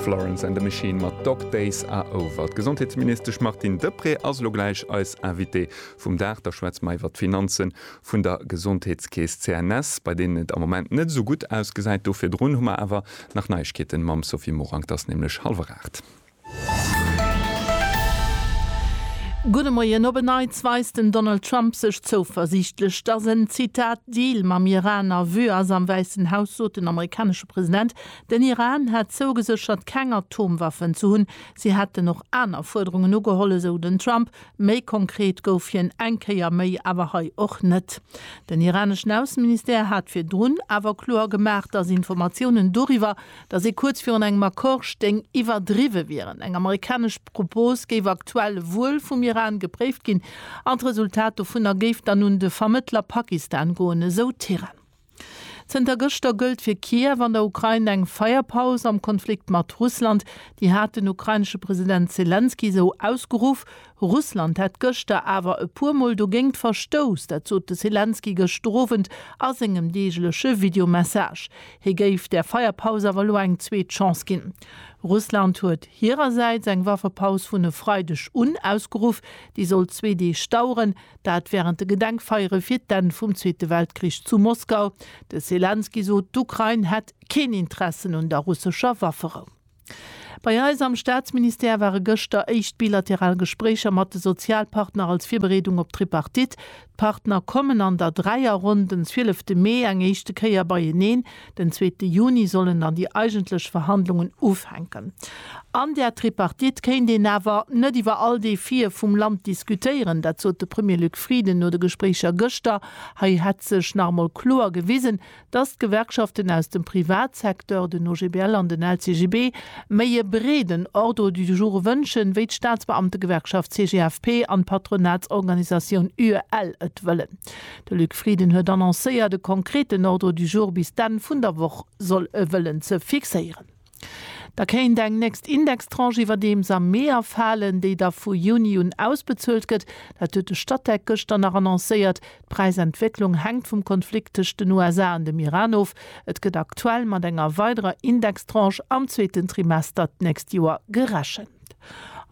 Florence and the Machine mat Dog Days Are Over. D'Gesondheetsministesch Martine Deprez ass elo gläich eis Invitée vum Dag. Da schwätze mer iwwer d'Finanze vun der Gesondheetskeess CNS, bei deenen et am Moment net esou gutt ausgesäit. Do virdrun hu mer awer nach Neiegkeeten mam Sophie Morang. Et ass nämlech hallwer aacht. Gudde Moien. Op en Neits weist den Donald Trump sech zouversiichtlech, datt en, Zitat, Deal mam Iran a Vue ass. Am Wäissen Haus sot den amerikanesche President, den Iran hätt zougeséchert, keng Atomwaffen ze hunn. Si hätten och aner Fuerderungen ugeholl, esou den Trump. Méi konkret gouf hien eng Kéier méi awer hei och net. Den iraneschen Ausseministère hat virdrun awer kloer gemaach, datt Informatiounen doriwwer, datt ee kuerz virun engem Accord stéing, iwwerdriwwe wieren. Eng amerikanesch Propos géif aktuell e Wuel vum Iran gepréift ginn an d'Resultat dovunner géif dann un de Vermëttler Pakistan goen, esou d'Tehran. Zënter gëschter gëllt fir Kiew an der Ukrain eng Feierpaus am Konflikt mat Russland. Déi hat den ukrainesche President Selenskyj esou ausgeruff. Russland hätt gëschter awer e puer Mol dogéingt verstouss, dat sot de Selenskyj gëschter Owend a sengem deegleche Videomessage. Hie géif der Feierpaus awer elo eng zweet Chance ginn. Russland huet hirersäits eng Waffepaus vun e Freideg un ausgeruff, déi soll zwee Deeg daueren, dat wärend de Gedenkfeiere fir d'Enn vum Zweete Weltkrich zu Moskau. De Selenskyj sot, d'Ukrain hätt keen Interessen un der russescher Wafferou. Bei eis am Staatsministère ware gëschter éischt bilateral Gespréicher mat de Sozialpartner als Virbereedung op d'Tripartite. D'Partner kommen an der Dräierronn den zwielefte Mee eng éischte Kéier beieneen. Den zweete Juni sollen dann déi eigentlech Verhandlungen ufänken. An där Tripartite kéint een awer net iwwer all Defie vum Land diskutéieren. Dat sot de Premier Luc Frieden no de Gespréicher gëschter. Hei hätt sech nach emol kloer gewisen, dass d'Gewerkschaften aus dem Privatsecteur, den OGBL an den LCGB, méi e breeden Ordre du jour wënschen, wéi d'Staatsbeamtegewerkschaft CGFP an d'Patronatsorganisatioun UEL et wëllen. De Luc Frieden huet annoncéiert, e konkreten Ordre du jour bis d'Enn vun der Woch soll e wëllen ze fixéieren. Da kéint eng nächst Indextranche iwwerdeems am Mee erfalen, déi da vu Juni un ausbezuelt gëtt. Dat huet de Statec gëschter nach annoncéiert. D'Präisentwécklung hänkt vum Konflikt tëscht den USA an dem Iran of. Et gëtt aktuell mat enger weiderer Indextranche am zweeten Trimester d'nächst Joer gerechent.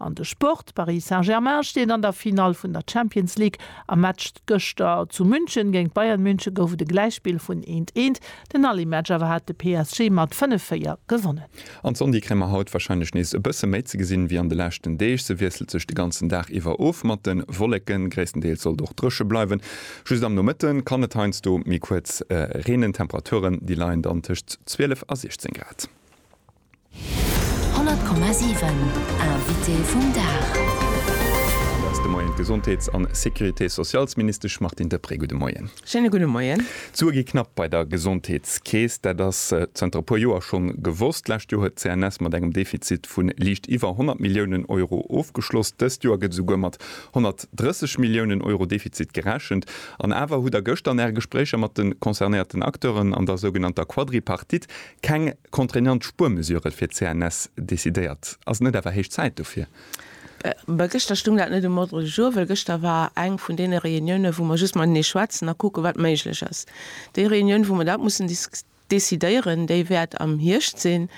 An de Sport, Paris Saint-Germain steet an der Finall vun der Champions League. Am Match gëschter zu München géint Bayern München gouf et e Gläichspill vun eent, eent. Den Aller Match awer hat de PSG mat fënnef, véier gewonnen. An d'Sondy kréie mer haut warscheinlech nees e bësse méi ze gesinn, wéi an de leschten Deeg. Se wiesselt sech de ganzen Dag iwwer of mat de Wolleken. Gréisstendeels soll et och dréche bleiwen. Just am Nomëtte kann et heiansdo méi kuerz reenen. D'Temperaturen, déi leien dann tëscht 12 a 16 Grad. 100,7 Invité vum Dag. An do ass de Moien d'Gesondheets an Sécurité-socialsministesch Martine Deprez. Gudde Moien. Schéine gudde Moien. D'Sue gi knapp bei der Gesondheetskeess. Dat ass zënter e puer Joer schonn gewosst. D'lescht Joer huet d'CNS mat engem Defizit vu liicht iwwer 100 Milliounen Euro ofgeschloss. Dëst Joer gëtt esouguer mat 130 Milliounen Euro Defizit gerechent. An awer hutt Der gëschter an Äre Gespréicher mat de concernéierten Acteuren an der sougenannter Quadripartite keng Contraignant Spuermesure fir d'CNS decidéiert. Ass et net awer héich Zäit dofir? Mä gëschter stung dat net um Ordre du jour, well gëschter war eng vun deene Reuniounen, wou mer just matenee schwätzen a kucken, wat méiglech ass. Déi Reunioun, wou mer dat mussen decidéieren, déi wäert am Hierscht sinn.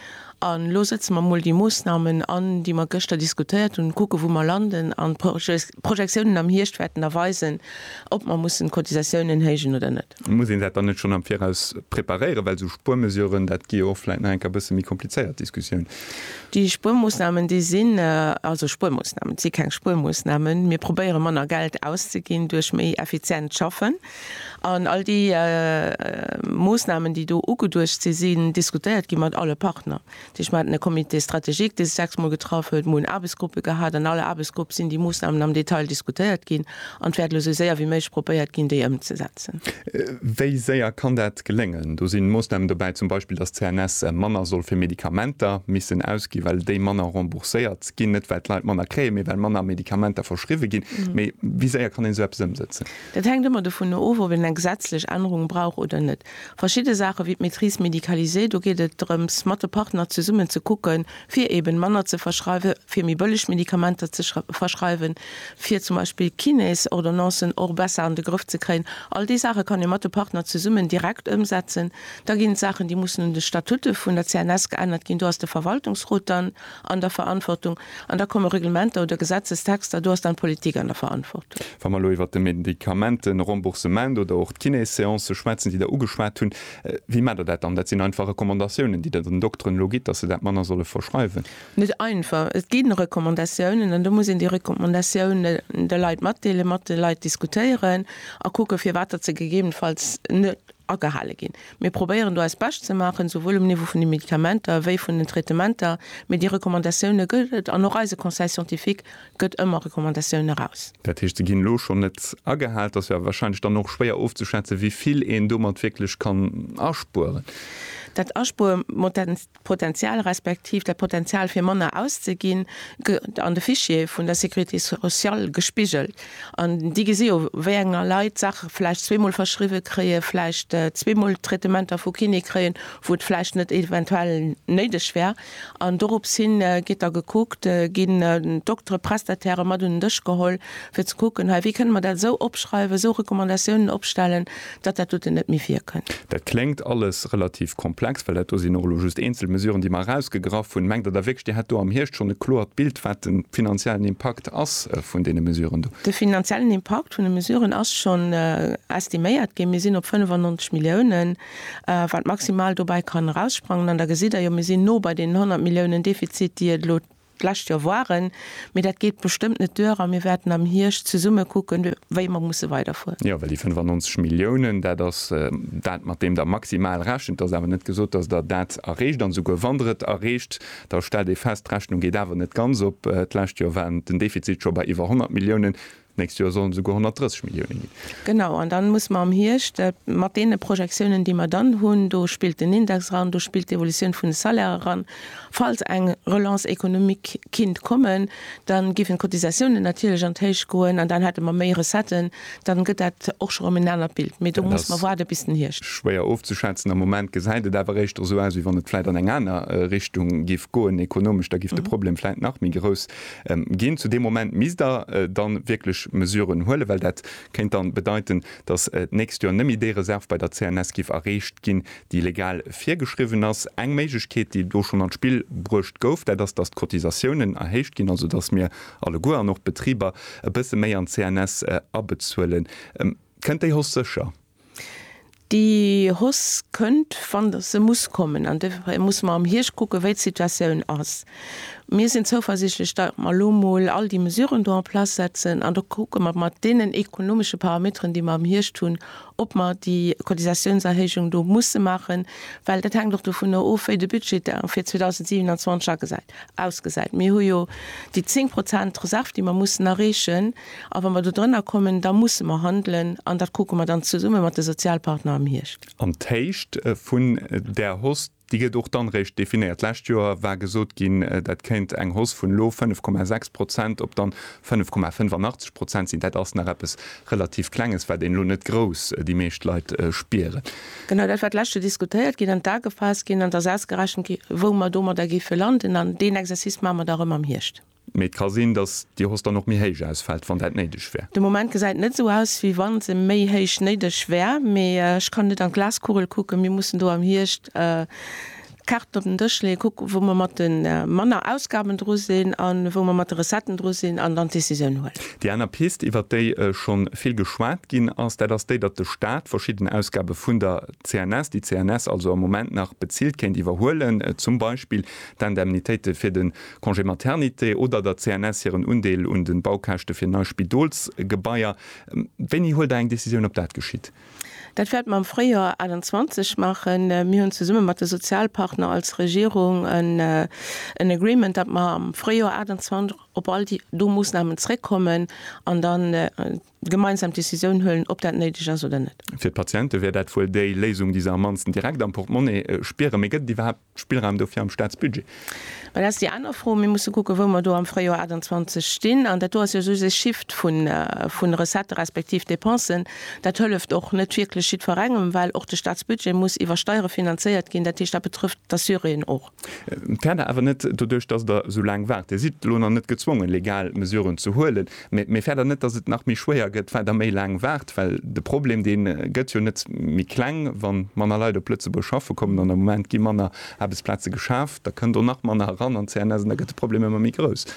A lo sëtze mer emol déi Moosnamen an, déi mer gëschter diskutéiert hunn, kucken, wou mer landen an d'Projets D'Projektiounen am Hierscht wäerten da weisen, ob mer mussen d'Cotisatiounen héijen oder net. Muss een dat dann net schonn am Viraus preparéieren, well esou Spuermesuren, dat gi jo och vläit nach eng Kéier e bësse méi komplizéiert Diskussioun. Déi Spuermoosnamen, déi sinn also Spuermoosnamen, et si keng Spuermoosnamen. Mir probéiere manner Geld auszeginn duerch méi effizient Schaffen. An all déi Moosnamen, déi do ugeduecht sinn, sinn diskutéiert gi mat alle Partner. Déi ech mer haten e Comité stratégique, dee sech sechs Mol getraff huet. Mer hunn Aarbechtsgruppe gehat. An all Aarbechtsgrupp sinn déi Moossnamen am Detail diskutéiert ginn. An et wäert elo esou séier wéi méiglech probéiert ginn, déi ëmzesetzen. Wéi séier kann dat geléngen? Do sinn Moossnamen dobäi, zum Beispill, dass d'CNS manner soll fir Medikamenter missen ausginn, well déi manner rembourséiert ginn. Net well d'Leit manner kréien, mee well manner Medikamenter verschriwwe ginn. Mee wéi séier kann een esou eppes ëmsetzen? Dat hänkt ëmmer dovunner of, ob een eng gesetzlech Ännerung brauch oder net. Verschidde Saache wéi d'Maîtrise médicalisée, do geet et drëms, mat de Partner zesummen ze kucken, fir eeben manner ze verschreiwen, fir méi bëlleg Medikamenter ze verschreiwen, fir zum Beispill Kinés-Ordonnancen och besser an de Grëff ze kréien. All déi Saache kann ee mat de Partner zesummen direkt ëmsetzen. Da ginn et Saachen, déi mussen un de Statute vun der CNS geännert ginn. Do ass de Verwaltungsrot dann an der Verantwortung, an da komme Reglementer oder Gesetzestexter, do ass dann d'Politik an der Verantwortung. Wa mer elo iwwert de Medikamenteremboursement oder och d'Kinéseancë schwätzen, déi Der ugeschwat hunn, wéi maacht Der dat dann? Dat sinn einfach Recommandatiounen, déi Der den Dokteren elo gitt, datt se dat manner solle verschreiwen? Net einfach. Et ginn Recommandatiounen an do muss een déi Recommandatiounen de Leit matdeelen, mat de Leit diskutéieren a kucken, firwat datt se gegebenenfalls net agehale ginn. Mir probéieren do eist Bescht ze maachen, souwuel um Niveau vun de Medikamenter wéi vun den Traitementer, mee déi Recommandatioune gëtt et an och eise Conseil scientifique gëtt ëmmer Recommandatioune eraus. Dat heescht, se ginn elo schonn net agehal. Et ass jo warscheinlech dann och schwéier ofzeschätzen, wéi vill een domat wierklech kann aspueren. Dat Aspuermotenz, D'Potenzial respektiv dat Potenzial fir manner auszeginn gëtt an de Fichiere vun der Sécurité sociale gespigelt an déi gesi jo wéi enger Leit d'Saache vläicht zweemol verschriwwe kréien, vläicht zweemol Traitementer vu Kiné kréien, wou et vläicht net eventuell néideg wär. An dorops hin gétt da gekuckt, ginn d'Doktere, Prestatairen mat un den Dësch geholl, fir ze kucken, hei, wéi kënne mer dat esou opschreiwen, esou Recommandatiounen opstellen, Datt dat doten net méi virkënnt. Dat kléngt alles relativ komplex, well dat do sinn och elo just eenzel Mesuren, déi mer erausgegraff hunn. Mengt Der da wierklech, Dir hätt do am Hierscht schonn e kloert Bild, wat de finanziellen Impakt ass vun deene Mesuren do? De finanziellen Impakt vun de Mesuren ass schonn estiméiert ginn. Mir sinn op 95 Milliounen, wat maximal dobäi kann eraussprangen. An da gesitt Der jo, mir sinn no bei deenen 100 Milliounen Defizit, déi et elo D'lescht Joer war en, mee dat geet bestëmmt net duer a mir wäerten am Hierscht zesumme kucken, wéi mer musse weiderfueren. Jo, well déi 95 Milliounen, dat ass dat, mat deem Der maximal rechent. Et ass awer net gesot, dass Der dat erreecht. An esouguer wann Der et erreecht, da stellt ee fest, D'Rechnung geet awer net ganz op. D'lescht Joer war den Defizit scho bei iwwer 100 Milliounen. D'nächst Joer sollen et esouguer 130 Millioune ginn. Genau, an dann muss mer am Hierscht mat deene Projektiounen, déi mer dann hunn, do spillt den Index eran, do spillt d'Evolutioun vun de Salairen eran, falls eng Relance économique kinnt kommen, da géifen d'Cotisatiounen natierlech an d'Héicht goen an dann hätte mer méi Recetten, dann gëtt dat och scho erëm en anert Bild. Mee do muss mer waarde bis den Hierscht. Schwéier ofzeschätzen. Am Moment gesäit et awer éischter esou aus, wéi wann et vläit an eng aner Richtung géif goen, ekonomesch. Da géif de Problem vläit nach méi grouss ginn. Zu deem Moment misst Der dann wierklech Mesuren huelen, well dat kéint dann bedeiten, dass d'nächst Joer nëmme déi Reserv bei der CNS giff erreecht ginn, déi legal virgeschriwwen ass. Eng Méiglechkeet, déi do schonn an d'Spill bruecht gouf, dat ass, dass d'Cotisatiounen erhéicht ginn, also dass mir alleguer an och d'Betriber e bësse méi an d'CNS abezuelen. Kënnt déi Hausse sécher? Déi Hoss kënnt, wann se muss kommen. An dofir musse mer am Hierscht kucken, wéi d'Situatioun ass. Mir sinn zouversichtlech, datt mer elo mol all déi Mesuren do en place setzen. An da kucke mer mat deenen ekonomesche Parameteren, déi mer am Hierscht hunn, ob mer déi Cotisatiounserhéijung do musse maachen. Well dat hänkt och dovunner of, wéi de Budget da fir 2027 agesäit, ausgesäit. Mir hu jo déi 10 Prozent Reserv, déi mer mussen erreechen. A wa mer do drënner kommen, da musse mer handelen, an dat kucke mer dann zesumme mat de Sozialpartner am Hierscht. An d'Héicht vun där Hoss, déi gëtt och dann réischt definéiert. D'lescht Joer war gesot ginn, dat kéint eng Hoss vun elo 5,6 Prozent op dann 5,85 Prozent sinn. Dat ass nach eppes relativ Klenges, wat een elo net grouss déi meescht Leit spieren. Genau dat war d'lescht Joer diskutéiert ginn, an d'A gefaasst ginn, an et ass ausgerechent gi wou mer domadder géife landen. An deen Exercice maache mer da erëm am Hierscht. Mee et ka sinn, dass déi Hausse dann och méi héich ausfält, wann dat néideg wär. De Moment gesäit net esou aus, wéi wa se méi héich néideg wär. Mee ech kann net an d'Glaskugel kucken. Mir mussen do am Hierscht d'Kaarten op den Dësch leeën, kucken, wou mer mat de manner Ausgaben dru sinn a wou mer mat de Recetten dru sinn, an dann d'Decisioun huelen. Déi aner Pist, iwwert déi schonn vill geschwat ginn ass, dat ass déi, datt de Staat verschidden Ausgabe vun der CNS, déi d'CNS also am Moment nach bezilt, kéint iwwerhuelen, zum Beispill d'Indemnitéite fir de Congé maternité oder der CNS hiren Undeel un de Baukäschte fir nei Spidolsgebaier. Wéini huelt Der eng Decisioun, ob dat geschitt? Dat wäerte mer am Fréijoer 28 maachen. Mir hunn zesumme mat de Sozialpartner als Regierung en Agreement, datt mer am Fréijoer 28 op all do Moossnamen zréckkommen an dann gemeinsam d'Decisioun huelen, ob dat néideg ass oder net. Fir d'Patiente wär dat wuel déi Léisung, déi se am mannsten direkt am Portmonni spieren. Mee gëtt et iwwerhaapt Spillraum dofir am Staatsbudget? Dat ass déi aner Fro. Mir musse kucken, wou mer do am Fréijoer 28 stinn. An dat do ass jo soss e Shift vu Recettë respektiv Dépensen. Dat hëlleft och net wierklech jiddwerengem, well och de Staatsbudget muss iwwer Steiere finanzéiert ginn. Dat heescht, dat betrëfft d'Assuréen och. D'Fäerder awer net doduerch, dass Der esou laang waart. Dir sidd elo nach net gezwongen, legal Mesuren ze huelen, mä d'Fäerder net, dass et nach méi schwéier gëtt, well Der méi laang waart. Well de Problem, dee gëtt jo net méi kleng, wa manner Leit op Lëtzebuerg schaffe kommen an am Moment gi manner Aarbechtsplaze geschaaft, da kënn do nach manner eran an d'CNS an da gëtt de Problem ëmmer méi grouss.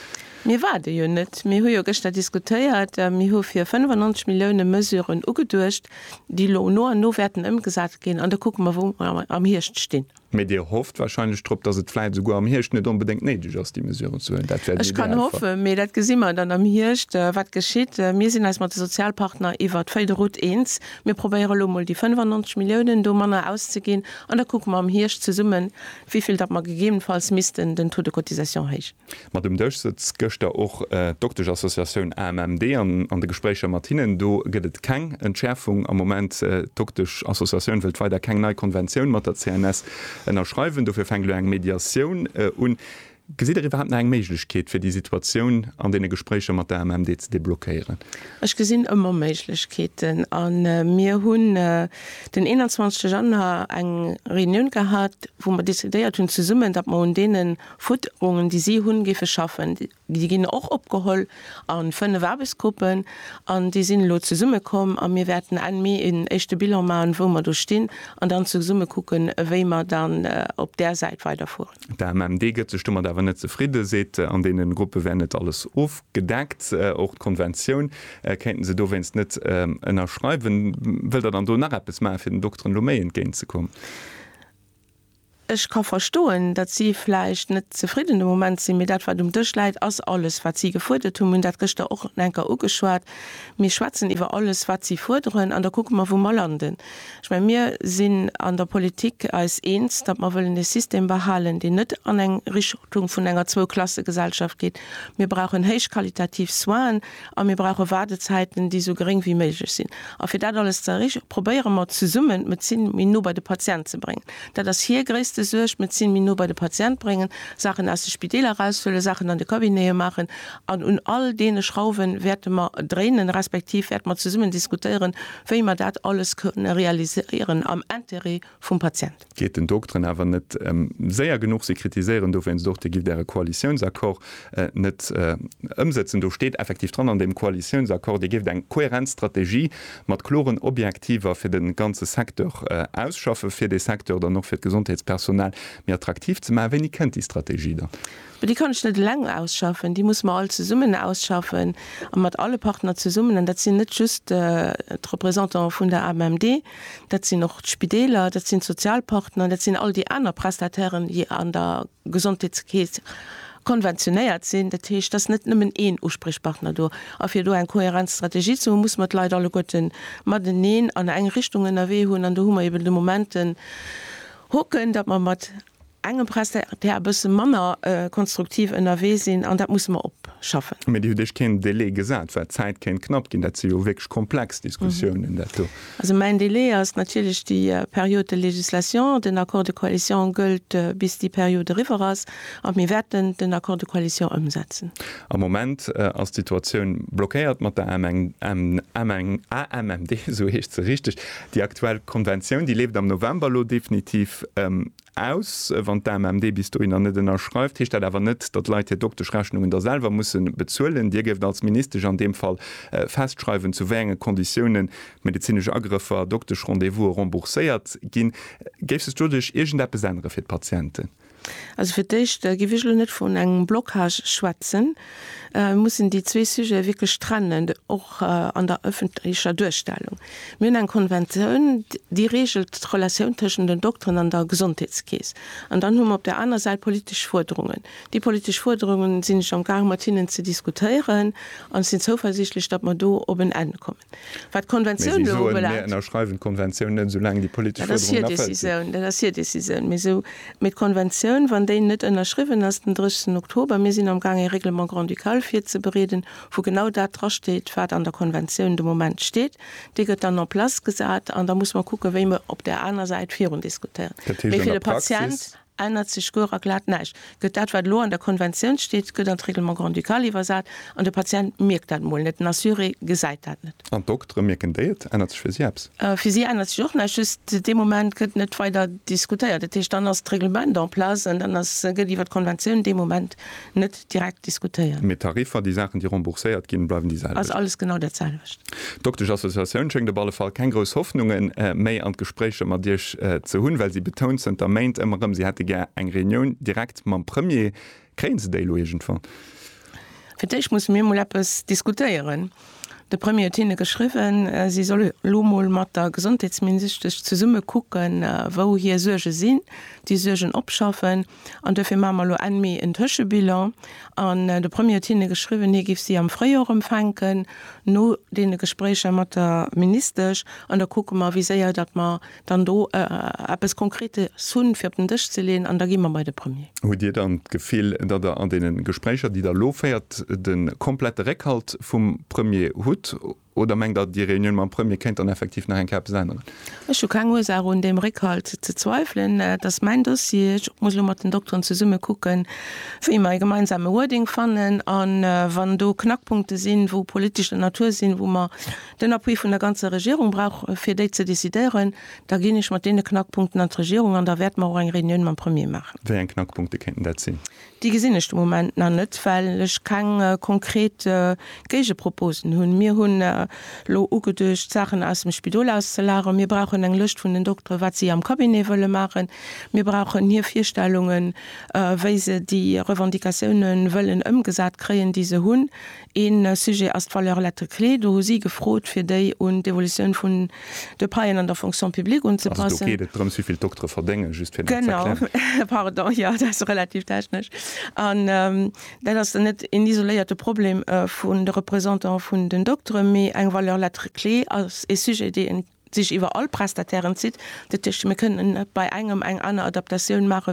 Mir waarde jo net. Mir hu jo gëschter diskutéiert a mir hu fir 95 Milliounen Mesuren ugeduecht, déi elo no an no wäerten ëmgesat ginn an da kucke mer, wou mer am Hierscht stinn. Mee Dir hofft warscheinlech drop, datt et vläit esouguer am Hierscht net onbedéngt néideg ass, déi Mesuren ze huelen. Dat wär den Ech kann Idealfall. hoffen, mee dat gesi mer dann am Hierscht, wat geschitt. Mir sinn eis mat de Sozialpartner iwwer d'Feuille de route eens. Mir probéiere lo mol déi 95 Milliounen do manner auszeginn an da kucke mer am Hierscht zesummen, wéi vill datt mer gegebenfalls missten den Taux de cotisation héich. Mat um Dësch sëtzt gëschter och d'Doktesch-Associatioun AMMD an an de Gespréicher mat hinnen, do gëtt et keng Entschäerfung am Moment. D'Doktesch-Associatioun wëllt weider keng nei Konventioun mat der CNS ënnerschreiwen. Dofir fänkt elo eng Mediatioun un. Gesitt Der iwwerhaapt nach eng Méiglechkeet, fir déi Situatioun an deene Gespréicher mat der AMMD ze deblockéieren? Ech gesinn ëmmer Méiglechkeeten a mir hunn den 21 Januar eng Reunioun gehat, wou mer decidéiert hunn zesummen, datt mer un deenen Fuerderungen, déi si hunn, géife schaffen. Déi ginn och opgeholl a fënnef Aarbechtsgruppen an déi sinn elo zesumme komm a mir wäerten Enn Mee een éischte Bilan maachen, wou mer do stinn an dann zesumme kucken, wéi mer dann op där Säit weiderfueren. D'AMMD gëtt sech domat awer net zefridden, seet, an deene Gruppe wär net alles ofgedeckt. Och d'Konventioun kéinten se dowéinst net ënnerschreiwen. Wëllt Der dann do nach eppes maachen, fir den Dokteren elo méi entgéint ze kommen? Ech ka verstoen, datt si vläicht net zefridden de Moment sinn, mee dat, wat um Dësch läit, ass alles, wat si gefuerdert hunn. Mir hunn dat gëschter och nach enker ugeschwat. Mir schwätzen iwwer alles, wat si fuerderen, an da kucke mer, wou mer landen. Ech mengen, mir sinn an der Politik eis eens, datt mer wëllen e System behalen, deen net an eng Richtung vun enger Zwou-Klasse-Gesellschaft geet. Mir brauchen héichqualitativ Soinen a mir brauche Waardezäiten, déi esou geréng wéi méiglech sinn. A fir dat alles ze erreeche probéiere mer zesummen d'Medezin méi no bei de Patient ze bréngen. Dat ass hir gréisste Suerg, d'Medezin méi no bei de Patient bréngen, Saachen aus de Spideeler eraushuelen, Saachen an de Cabinete maachen. An un all deene Schrauwe wäerte mer dréinen, respektiv wäerte mer zesummen diskutéieren, wéi mer dat alles kënne realiséieren am Intérêt vum Patient. Geet den Dokteren awer net séier genuch. Si kritiséieren dowéinst och, Dir gift Äre Koalitiounsaccord net ëmsëtzen. Do steet effektiv dran an deem Koalitiounsaccord, Dir géift eng kohärent Strategie mat kloren Objektiver fir de ganze Secteur ausschaffen, fir dee Secteur dann och fir d'Gesondheetspersonal méi attraktiv ze maachen. Wéini kënnt déi Strategie dann? Déi kann ech net eleng ausschaffen, déi musse mer all zesummen ausschaffen a mat alle Partner zesummen. An dat sinn net just d'Représentanten vun der AMMD, dat sinn och d'Spideeler, dat sinn d'Sozialpartner, dat sinn all déi aner Prestatairen, déi an der Gesondheetskeess konventionéiert sinn, dat heescht, et ass net nëmmen een Uspriechpartner do, a fir do eng kohärent Strategie ze hunn, muss mer d'Leit alleguerten mateneen an eng Richtung ënnerwee hunn, an do hu mer eben de Moment den Hoken, datt mer mat engem Prestataire e bësse manner konstruktiv ënnerwee sinn, an dat musse mer opschaffen. Mä Dir hutt Iech keen Delai gesat, well d'Zäit kéint knapp ginn. Dat si jo wierklech komplex Diskussiounen, dat do. Also mäin Délai ass natierlech déi Période de législation. Den Accord de coalition gëllt, bis déi Period eriwwer ass. A mir wäerten den Accord de coalition ëmsetzen. Am Moment ass d'Situatioun blockéiert mat der AMMD, esou heescht se richteg. Déi aktuell Konventioun, déi leeft am November elo definitiv Aus. Wann d'AMMD bis dohinner net ënnerschreift, heescht dat awer net, datt Leit hir Dokteschrechnungen da selwer musse bezuelen. Dir géift als Ministesch an deem Fall festschreiwen, zu wéi enge Konditiounen medezinesch Agrëffer, Dokteschrendez-vouse rembourséiert ginn. Géif sech doduerch iergendeppes ännere fir d'Patienten? Also fir d'éischt géif ech elo net vun engem Blocage schwätzen. Mir mussen déi zwee Sujete wierklech trennen, och an der ëffentlecher Duerstellung. Mir hunn eng Konventioun, déi reegelt d'Relatioun tëschent den Dokteren an der Gesondheetskeess. An dann hu mer op där aner Säit politesch Fuerderungen. Déi politesch Fuerderungen sinn ech amgaang mat hinnen ze diskutéieren an ech sinn zouversiichtlech, datt mer do op en Enn kommen. Wat d'Konventioun elo ubelaangt. Mä si soen, Mir ënnerschreiwen d'Konventioun net, soulaang déi politesch Fuerderungen erfëllt sinn. Dat ass hir Décisioun, dat ass hir Décisioun. Mee esou, mee d'Konventioun, wann déi net ënnerschriwwen ass den 30 Oktober, mir sinn am Gaang ee Règlement grand-ducal virzebereeden, wou genau dat drasteet, wat an der Konventioun de Moment steet, dee gëtt dann en place gesat an da muss mer kucken, wéi mer op där aner Säit virundiskutéieren. Dat heescht an der Praxis. Ännert sech guer a glat näischt. Gëtt dat, wat elo an der Konventioun steet, gëtt an d'Règlement grand-ducal iwwersat, an de Patient mierkt dat mol net, den Assuré gesäit dat net. An d'Doktere, mierken déi et? Ännert sech fir si eppes? Fir si ännert sech och näischt, just dee Moment gëtt net weider diskutéiert. Dat heescht, dann ass d'Règlement en place an dann ass, gëtt iwwer d'Konventioun dee Moment net direkt diskutéieren. Mee d'Tariffer, déi Saachen, déi rembourséiert ginn, bleiwen déi selwecht? Ass alles genau dat selwecht. D'Dokteschassociatioun schéngt op alle Fall keng grouss Hoffnunge méi an d'Gespréicher mat Iech ze hunn, well si betount zënter Méint ëmmer erëm, si hätte gär eng Reunioun direkt mam Premier. Kréie se déi elo iergendwann? Fir d'éischt musse mir mol eppes diskutéieren. De Premier huet hinne geschriwwen, si solle lo mol mat der Gesondheetsminisischtesch zesumme kucken, wou hir Suerge sinn, déi Suergen opschaffen, An duerfir maache mer elo Enn Mee en Tëschebilan. An de Premier huet hinne geschriwwen, hie géif si am Fréijoer empfänken, no deene Gespréicher mat der Ministesch. An da kucke mer, wéi séier datt mer dann do eppes Konkretes hunn, fir op den Dësch ze leeën. An da gi mer bei de Premier. Hutt Dir dann d'Gefill, datt Der an deene Gespréicher, déi Der elo féiert, de komplette Réckhalt vum Premier hutt? Oder mengt Der, déi Reunioun mam Premier kéint dann effektiv nach eng Kéier eppes änneren? Ech hu keng Ursaach un deem Réckhalt ze zweiwelen. Et ass mäin Dossier. Ech muss elo mat den Dokteren zesumme kucken, wéi mer ee gemeinsame Wording fannen. A wann do Knackpunkte sinn, wou politescher Natur sinn, wou mer den Appui vun der ganzer Regierung brauchen, fir déi ze decidéieren, da ginn ech mat deene Knackpunkten an d'Regierung an da wäerte mer och eng Reunioun mam Premier maachen. Wéi eng Knackpunkte kéinten dat sinn? Déi gesinn ech de Moment nach net, well ech keng konkret Géigeproposen hunn. Mir hunn elo ugeduecht, d'Saachen aus dem Spidol auszelageren. Mir brauchen eng Lëscht vun den Doktere wat si am Cabinet wëlle maachen. Mir brauchen hir Virstellungen, wéi se déi Revendicatioune wëllen ëmgesat kréien, déi se hunn. Een Sujet ass d'Valeur lettres clés. Do hu si gefrot, fir déi un d'Evolutioun vun de Paien an der Fonction publique unzepassen. Also do geet et drëms, wéi vill d'Doktere verdéngen, just fir dat z'erklären. Genau, pardon, jo, dat ass relativ technesch. An dat ass dann net een isoléierte Problem vun de Représentanten vun den Dokteren, mee eng Valeur lettres clés ass ee Sujet, dee sech iwwer all Prestatairen zitt. Dat heescht, mir kënnen net bei engem eng aner Adaptatioun maachen,